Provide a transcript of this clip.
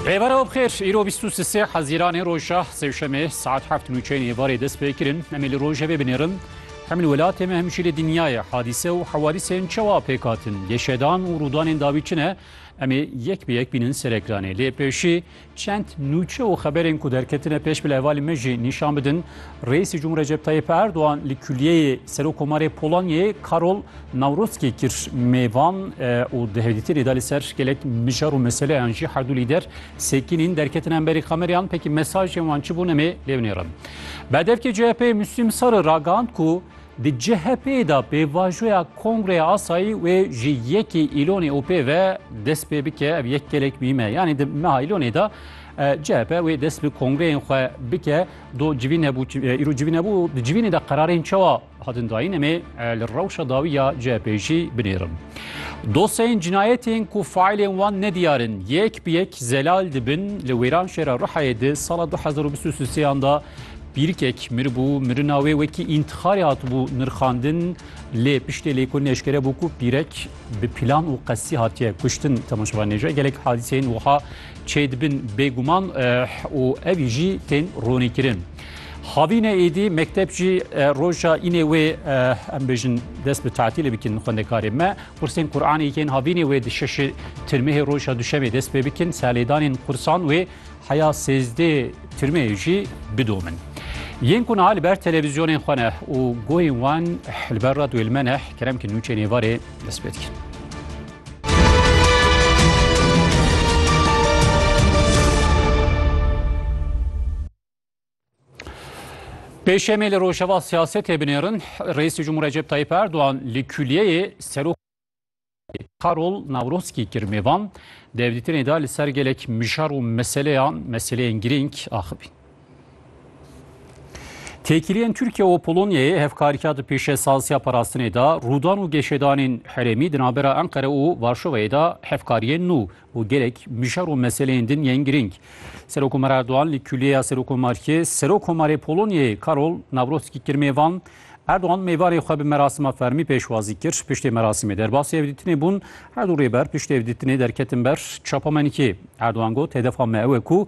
Rêber ew bixêr îro bîst û sisê hezîranê roja sêşemê saet heft nûçeyên êvarê dest pê kirin. Em ê li rojevê binêrin. Hem li welatê me hem jî li dinyayê hadîse û hewadîsên çawa pêk hatin, lêşedan û rûdanên dawî çi ne? Em ê yek bi yek bînin serekiranê. Lê pêşî Çend nûçe û xeberên ku derketine pêş bi li hevalê me jî nîşan bidin, Reîsê Cumhur Recep Tayyip Erdogan li Kuliyeyê Serokkomarê Polonyayê Karol Nawrotskî kir mêvan û di hevdîtinê de li ser gelek mijar û meseleyan jî herdû lîder sekînîn derketin hemberî kameriyan pekî mesajên wan çi bûn em ê lêvnêrin. Berdevkê CHP'ê Müslim Sarı ragihand ku Di CHP'ê de pêvajoya Kongreya Asayî wê ji yekê Îlonê û pê ve dest pê bike ev yek gelek mîm e. Yanî di meha Îlonê de CHP wê dest bi kongreyên xwe bike do civîn hebû îro civîn hebû di civînê de qerarên çawa hatin dayîn em ê li rewşa dawî ya CHP'ê jî binêrim. Dosyayên cinayetên ku faîlên wan nediyar in yek bi yek zelal dibin li wêran şêra Rihayê di sala 2023 yan de Pîrkek mir bû, mirina wê wekî întixarê hatibû nirxandin lê piştê lê ku neşkere bû ku pîrek bi pîlan û qesdî hatiye kuştin. Temaşevan nêje gelek hadîseyên wiha çêdibin bêguman û evî jî tên ronîkirin. Havîne êdî mekteb jî roja înê wê em bêjin dest bi tatilê bikin xwendekarê me. Qursên Quranê yên havînê wê di şeşê tirmehê roja duşemê dest pê bikin. Serlêdanên qursan wê Heya sêzdê tirmeyê jî bidomin. Yên ku niha li ber televîzyonên xwe ne û guhên wan li ber radyoyê me ne kerem ki nûçê nêvarê dest pê dikin. Pêşemê li rojeva siyasetê binêrin Reîsê Cumhur Recep Tayyip Erdoğan li kuliyeyê serok Karol Nawroskî kir mêvan dewlîtinê da li ser gelek mijar û meseleyan meseleyên girîng axivîn. Têkiliyên Tirkiye û Polonyayê hevkariya di pêşesaziya parastinê de rûdan û geşedanên herêmî di navbera Enqere û Varşovayê de hevkariyên nû û gelek mijar û meseleyên din yên girîng. Serokomar Erdogan li Kulîyeya Serokomariyê Serokomarê Polonyayê Karol Nawrotskî kir mêvan. Erdogan mêvanê xwe bi merasima fermî pêşwazî kir. Piştî merasimê derbasî hevdîtinê bûn. Her du rêber piştî hevdîtinê derketin ber çapamenikê. Erdogan got, Hedefa me ew e ku